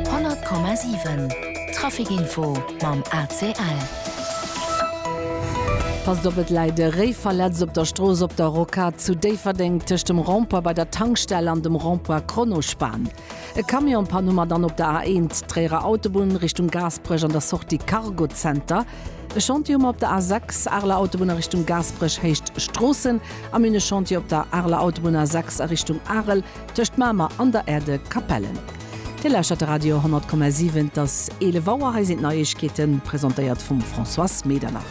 100,7 Traficinfo mam ACL. Passt op, et läit e Réiverletz op der Strooss Op der Rocade zu Déifferdeng tëscht dem Rond-point bei der Tankstell an dem Rond-point Kronospan. E Camion panne mat an op der A1 Tréierer Autobunn Richtung Gaasperech an der Sortie Cargo Center. E Chantier hu mer op der A6 Areler Autobunn a Richtung Gaasperech, Héicht Stroossen. A mir hunn e Chantier op der Areler Autobunn A6 a Richtung Arel. Tëscht Mamer an der Erde Capellen. Dir lauschtert de Radio 10,7. Et ass 11 Auer, hei sinn d'Neiegkeeten, presentéiert vum Françoise Medernach.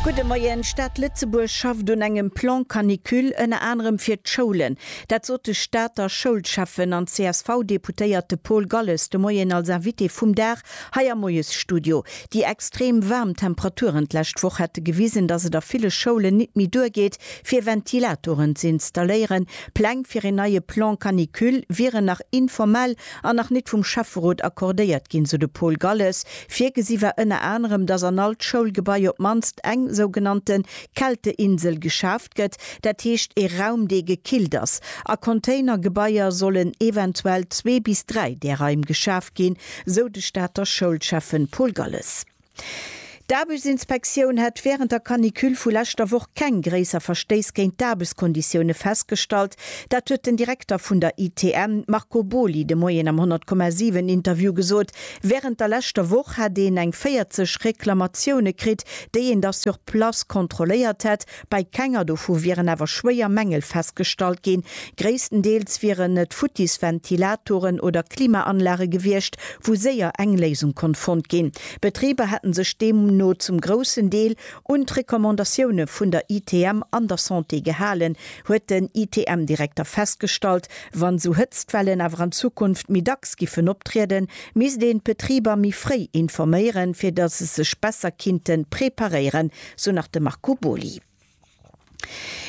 Gudde Moien, D'Stad Lëtzebuerg schafft un engem Plan canicule, ënner anerem fir d'Schoulen. Dat sot de Stater Schoulschäffen an CSV-Deputéierte Paul Galles de Moien als Invité vum Dag Hei am Moiesstudio. Déi extrem waarm Temperaturen d'lescht Woch hätte gewisen, datt et a ville Schoulen nit méi duergeet, fir Ventilatoren z'installéieren. Pläng fir een neie Plan canicule wieren nach informell an nach nit vum Schäfferot accordéiert ginn, sou de Paul Galles. Virgesi war ënner anerem, datt an all d'Schoulgebai op d'mannst eng sougenannte Kälteinsel geschaf. geschafft gëtt, dat heescht ee Raum dee gekillt ass. A Containergebaier sollen eventuell zwee bis dräi där Raim geschaf ginn, sou de Stater Schoulschäffen Paul Galles. D'Aarbechtsinspektioun hätt wärend der Canicule vu leschter Woch keng gréisser Verstéiss géint d'Aarbechtskonditioune festgestallt. Dat huet den Direkter vun der ITM Marco Boly de Moien am 100,7 Interview gesot. Wärend der leschter Woch hätt een eng 40 Reklamatioune kritt, déi een da sur place kontrolléiert hätt. Bei kenger dovu wieren awer schwéier Mängel festgestallt ginn. Gréisstendeels wieren et futtis Ventilatoren oder Klimaanlage gewiescht, wou séier eng Léisung konnt fonnt ginn. D'Betriber hätten sech deemno zum groussen Deel un d'Recommandatioune vun der ITM an der Santé gehalen, huet den ITM-Direkter festgestallt. Wann esou Hëtztwellen awer an Zukunft méi dacks giffen optrieden, misst een d'Betriber méi fréi informéieren, fir datt se sech besser kinnte preparéieren, sou nach de Marco Boly.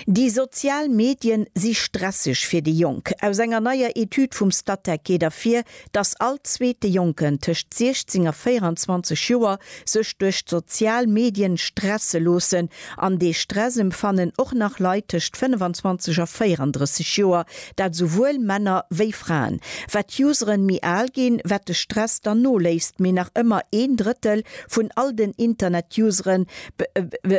Déi sozial Medien si stresseg fir déi Jonk. Aus enger neier Etüd vum Statec geet ervir, datt all zweete Jonken tëscht 16 a 24 Joer sech duerch d'sozial Medien stresse loossen. An dee Stress emfannen och nach Leit tëscht 25 a 34 Joer, dat souwuel Männer wéi Fraen. Wat d'Useren méi al ginn, wat de Stress dann noléisst, mee nach ëmmer een Drëttel Vun all den Internet-Useren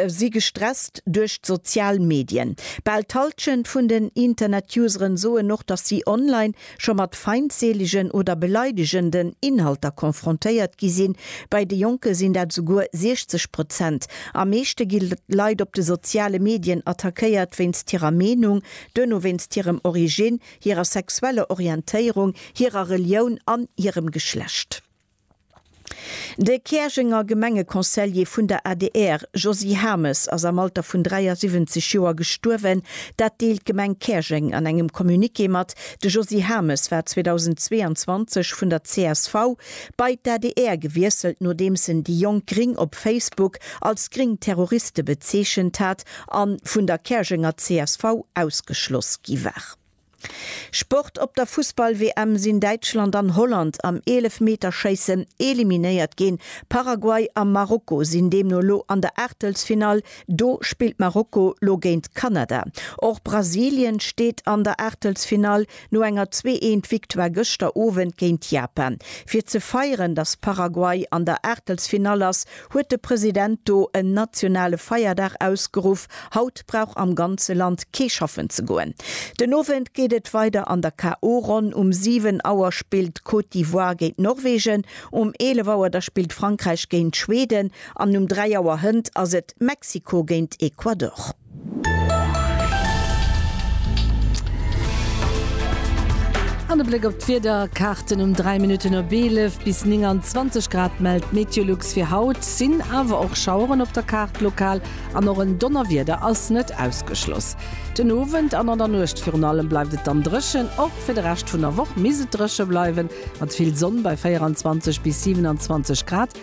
si gestresst duerch d'sozial Medien. Bal d'Halschent vun den Internet-Useren soen och, datt si online scho mat feindseelegen oder beleidegenden Inhalter konfrontéiert gi sinn. Bei de Jonke sinn dat esouguer 60 Prozent. Am meeschte gi Leit op de soziale Medien attackéiert wéinst hirer Meenung, duerno wéinst hirem Originn, hirer sexueller Orientéierung, hirer Relioun an hirem Geschlecht. De Käerjenger Gemengeconseiller vun der adr, Josy Hames, ass am Alter vun 73 Joer gestuerwen. Dat deelt d'Gemeng Käerjeng an engem Communiqué mat. De Josy Hames war 2022 vun der csv bei d'ADR gewiesselt, nodeems en déi jonk Gring op Facebook als gring Terroriste bezeechent hat a vun der Käerjenger csv ausgeschloss gi war. Sport Op der Fussball-WM sinn Däitschland an Holland am Eelefmeterschéissen eliminéiert ginn. Paraguay a Marokko sinn deemno elo an der Aachtelsfinall. Do spillt Marokko lo géint Kanada. Och Brasilien steet an der Aachtelsfinall no enger zwee eent Victoire gëschter Owend géint Japan. Fir ze feieren, datt Paraguay an der Aachtelsfinall ass, Huet de President do en nationale Feierdag ausgeruff, haut brauch am ganze Land kee schaffen ze goen. Den Owend geet et weider an der KO-Ronn. Um 7 Auer spillt d'Côte d'Ivoire géint Norwegen, um 11 Auer da spillt Frankräich géint Schweden an um 3 Auer hënt ass et Mexiko géint Ecuador. An e Bléck op d'Wiederkaarten, Um 3 Minutten op 11 bis 29 Grad mellt d'Meteolux fir haut, sinn awer och Schaueren op der Kaart lokal an och en Donnerwieder ass net ausgeschloss. Den Owend an an der Nuecht virun allem bleift et dann dréchen, och fir de Rescht vun der Woch misst et dréche bleiwen, mat vill Sonn bei 24 bis 27 Grad.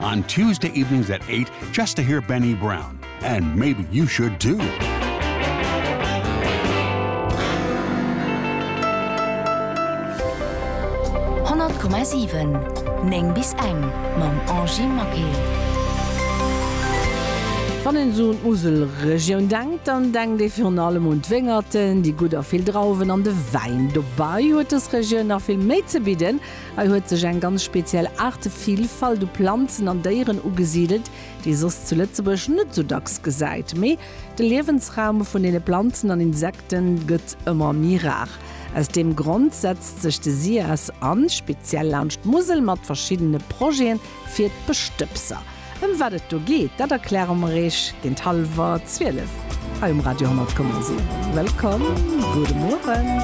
On Tuesday evenings at eight just to hear Benny Brown and maybe you should too. Komma 7 Neng bis eng mam Angie Maquet. Wann een esou un d'Muselregioun denkt, dann denkt ee virun allem un d'Wéngerten, déi gutt a vill Drauwen an de Wäin. Dobei huet dës Regioun nach vill méi ze bidden Hei huet sech eng ganz speziell Aartevillfalt u Planzen an Déieren ugesidelt, déi ee soss zu Lëtzebuerg net sou dacks gesäit. Mee de Liewensraum vun deene Planzen an Insekte gëtt ëmmer méi rar. Aus deem Grond setzt sech de SIAS an, speziell laanscht d'Musel, mat verschiddene Projete fir d'Bestëbser. Ëm wat et do geet, dat erkläre mer Iech géint hallwer 12 hei um Radio 10,7. Wëllkomm, gudde Mueren.